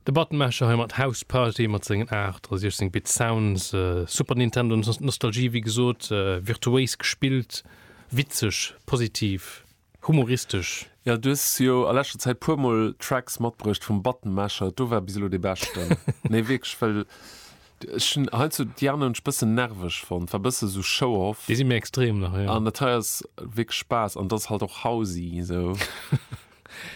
De Button Masher hei mat House Party mat sengen 68 Bit Sounds, Super Nintendo Nostalgie wéi gesot, virtuéis gespillt, witzeg, positiv, humoristesch. Jo, du hues jo a leschter Zäit puer mol Tracks matbruecht vum Button Masher, do war bis elo dee beschten. Nee wierklech, well ech hunn heiansdo déi aner hunn ech bëssen nerveg fonnt, war bëssen esou Show Off. Déi si méi extrem nach, jo. An dat hei ass wierklech Spaass an et ass halt och housey esou.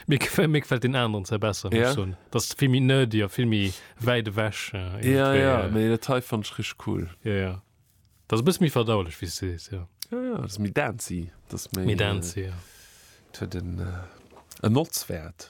Mir gefält, mir gefält deen aneren Zär besser, muss ech soen. Ja? Dat ass vill méi nerdy a vill méi wäit ewech. Ja, iergendwéi. ja, mee dat hei fannen ech richteg cool. Ja, ja. Dat ass e bësse méi verdaulech, wéi s de sees, ja. Ja, ja, dat ass méi dancy. Dat ass méi. Méi dancy, ja. Et huet en, en Notzwäert.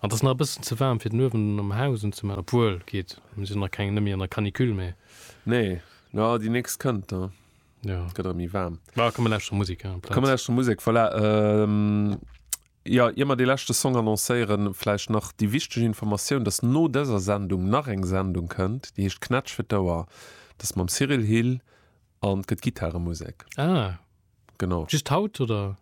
An d'ass nach e bëssen ze waarm fir den Uewen am Haus unzemaachen. Obwuel, geet, mir sinn jo nach keng, net méi an der Canicule, mee. Nee, jo, déi nächst kënnt, da gëtt erëm méi waarm. Mä komm, mir lauschteren Musek hei amplaz. Komm, mir lauschteren Musek, voilà. Jo, ier mer dee leschte Song annoncéieren, vläicht nach déi wichteg Informatioun, dass no dëser Sendung nach eng Sendung kënnt, déi heescht Knätsch fir d'Ouer. Dat ass mam Cyril Hill an gëtt Gittaremusek. Ah, just haut, oder?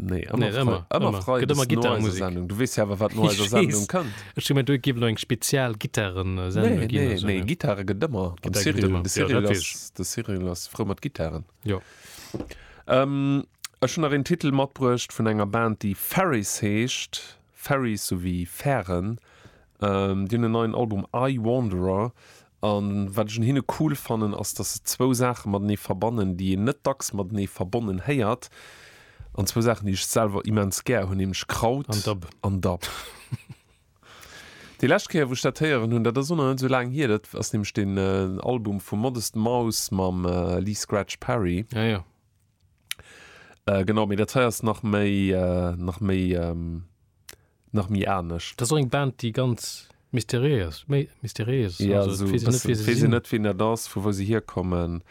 Nee, ëmmer, nee, ëmmer, ëmmer frei. Gëtt ëmmer Gitarrenmusik. Sendung. Du wees ja awer, wat no eiser Sendung kënnt. Ech hun mir do ginn eng spezial Gitarren äh, Sendung. Nee, nee, nee, Gitarre gëtt ëmmer. De Cyril ass frou mat Gitarren. Jo. Ähm, ech hun nach en Titel matbruecht vun enger Band, déi Ferris heescht. Ferries souwéi Fären, déi hunn en neien Album I Wanderer an wat ech un hinne cool fannen ass, dass se zwou Saache matenee verbannen, déi een net dacks matenee verbonnen héiert an zwou Saachen, déi ech selwer immens gär hunn, nämlech Kraut an Dub. Déi lescht Kéier, wou ech dat héieren hunn, dat ass och nach net esou laang hier, dat ass nämlech den Album vum Modest Mouse mam Lee Scratch Perry. Äh, genau, mee dat hei ass nach méi, äh, nach méi, ähm, nach méi anescht. Dat ass och eng Band, déi ganz mysteriéiers, méi mysteriéies ass. Ja, sou e bëssen. Et weess een net, wien dat ass, vu wou se hierkommen.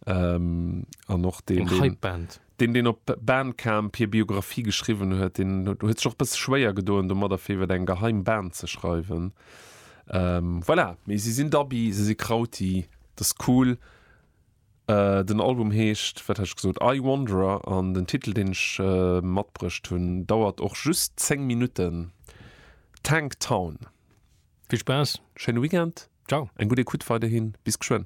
Ähm, an och deen, deen. Eng Hypeband. Deen, deen op Bandcamp hir Biografie geschriwwen huet, deen huet sech och e bësse schwéier gedoen domadder, fir iwwer eng geheim Band ze schreiwen. Ähm, voilà, mee si sinn Dubby, si si Krauti, dat ass cool. Den Album heescht, wat hat ech gesot, I Wanderer an den Titel, deen ech matbruecht hunn, dauert och just 10 Minutten, Tank Town. Vill Spaass, schéine Weekend, Ciao. Eng gutt Ecoute weiderhin, bis geschwënn.